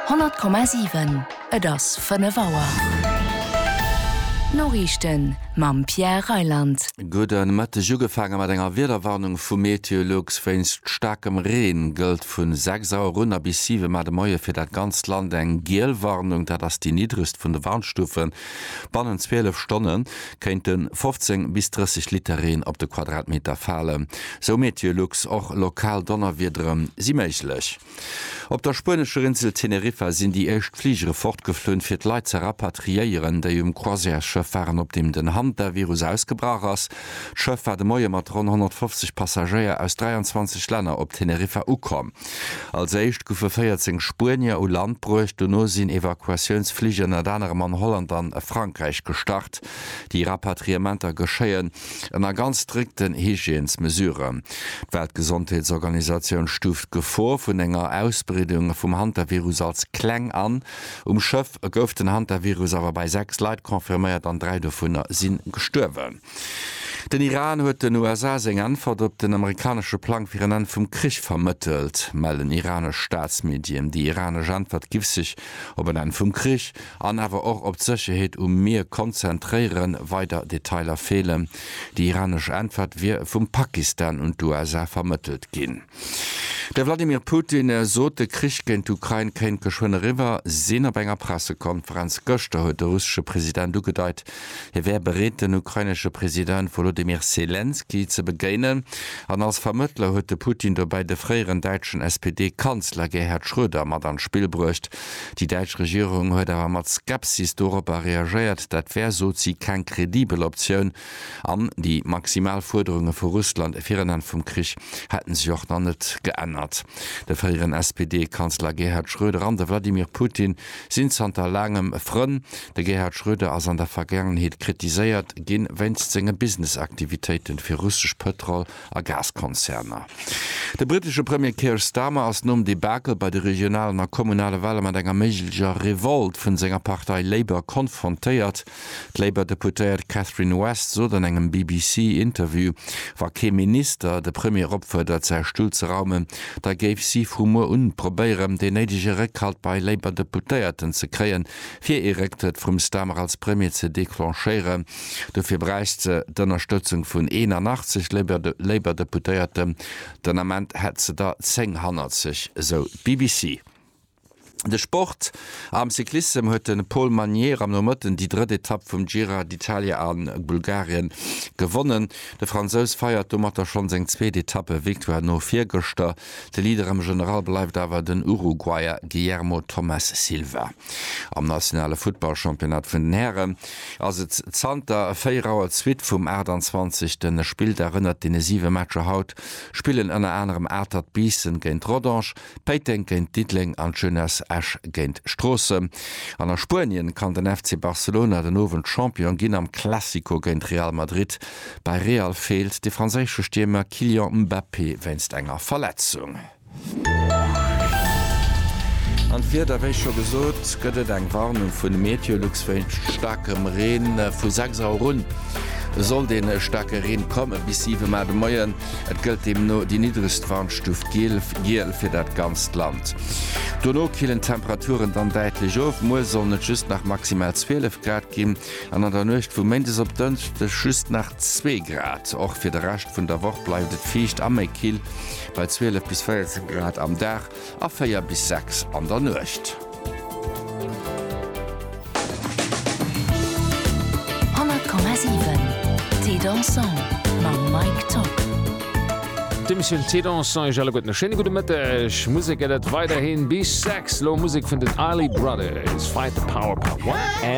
100,7 Et ass 5 Auer. D'Noriichten mam Pierre Reyland. Gudde Mëtteg, ugefaange mat enger Wiederwarnung vu Meteolux wéinst staarkem Reen. Gëllt vun 6 Auer un a bis 7 Mar de Moie fir dat ganzt Land eng giel Warnung, dat ass déi niddregst vun de Warnstufen. Bannent 12 Stonne kéinte 15 bis 30 Liter Reen op de Quadratmeter falen. Sou Meteolux, och lokal Donnerwiedere si méiglech. Op der spuenescher Insel Teneriffa sinn déi éischt Fligere fortgeflunn, fir d'Leit ze rapatriéieren, déi um Croisièresschëff waren, op deem den Hantavirus ausgebrach ass. D'Schëff war de Moie mat ronn 150 Passagéier aus 23 Länner op Teneriffa ukomm. Als éischt goufe 14 Spuenier u Land bruecht, dono sinn Evakuatiounsflich ënnert anerem an Holland an Frankräich gestart. Déi Rapatriementer geschéien ënner ganz strikten Hygiènesmesuren. D'Weltgesondheetsorganisatioun stuuft d'Gefor vun enger Ausbreedung vum Hantavirus als kleng an. Um Schëff gouf den Hantavirus awer bei 6 Leit confirméiert an 3 dovunner si gestuerwen. Den Iran huet den USA seng Äntwert op den amerikanesche Plang fir en Enn vum Krich vermëttelt, mellen iranesch Staatsmedien. Déi iranesch Äntwert giff sech op en Enn vum Krich an awer och op d'Sécherheet um Mier konzentréieren. Weider Detailer feelen. Déi iranesch Äntwert wier vum Pakistan un d'USA vermëttelt ginn. De Vladimir Putin sot, de Krich géint d'Ukrain kéint geschwënn eriwwer sinn. Op enger Pressekonferenz gëschter huet de russesche President ugedeit, hie wär bereet, den ukrainesche President Wolodymyr Selenskyj ze begéinen. An als Vermëttler huet de Putin dobäi de fréieren däitschen SPD-Kanzler Gerhard Schröder mat an d'Spill bruecht. Déi däitsch Regierung huet awer mat Skepsis doropper reagéiert, dat wär, sot si, keng kredibel Optioun, An déi maximal Fuerderunge vu Russland fir en Enn vum Krich hätte sech och nach net geännert. De fréieren SPD-Kanzler Gerhard Schröder an de Wladimir Putin sinn zanter laangem Frënn. De Gerhard Schröder ass an der Vergaangenheet kritiséiert gi wéinst senge Business-Aktivitéite fir russesch Pëtrol a Gaskonzerner. De brittesche Premier Keir Starmer ass nom Debakel bei de regionalen a kommunale Wahle mat enger méiglecher Revolt vun senger Partei Labour konfrontéiert. D'Labour Deputéiert Catherine West sot an engem BBC Interview, wa kee Minister de Premier opfuerdert säi Stull ze raumen, da géif si vu muer un probéieren deen néidege Réckhalt bei Labour Deputéierten ze kréien, fir ee Récktrëtt vum Starmer als Premier ze declenchéieren. Dofir bräicht se d'Ënnerstëtzung vun 81 Labour Deputéierten. Den Ament hätt se der 10 hannert sech, esou d'BBC. De Sport, Am Cyclissem huet de Paul Magnier am Nomëtten déi drëtt Etapp vum Gira d'Italia a Bulgarien gewonnen. De Fransous feiert domatter schonn seng zweet Etappe-Victoire no virgëschter. De Leader am General bleift awer den Uruguayer Guillermo Thomas Silva. Am nationale Futtball-Championnat vun den Hären ass et zanter 4 Auer d'Suite vum 28. Spilldag. Ënnert deene 7 Matcher haut spillen ënner anerem Atert Biissen géint Rodange, Péiteng géint Diddeleng an d'Jeunesse Esch géint Stroossen. An a Spuenien kann den FC Barcelona den Owend Champion ginn am Classico géint Real Madrid. Bei Real feelt de franséische Stiermer Kylian Mbappé wéinst enger Verletzung. An d'Wieder, wéi scho gesot, gëtt et eng Warnung vun Meteolux wéinst staarkem Reen. Vu 6 Auer un sollt ee staarke Reen komme bis 7 Auer de Moien. Et gëllt deemno déi niddregst Warnstuuf Giel fir dat ganzt Land. Dono killen d'Temperaturen dann däitlech of, muer sollen et just nach maximal 12 Grad ginn an an der Nuecht vu Méindes op Dënschdeg just nach zwee Grad. Och fir de Rescht vun der Woch bleift et fiicht a méi kill, bei 12 bis 14 Grad am Dag a 4 bis 6 an der Nuecht. D'Emissioun Thé Dansant iech alleguerten e schéine gudde Mëtteg. Musek gëtt et weiderhi bis 6, lo Musek vun den Isley Brothers, Fight the Power Part 1 a.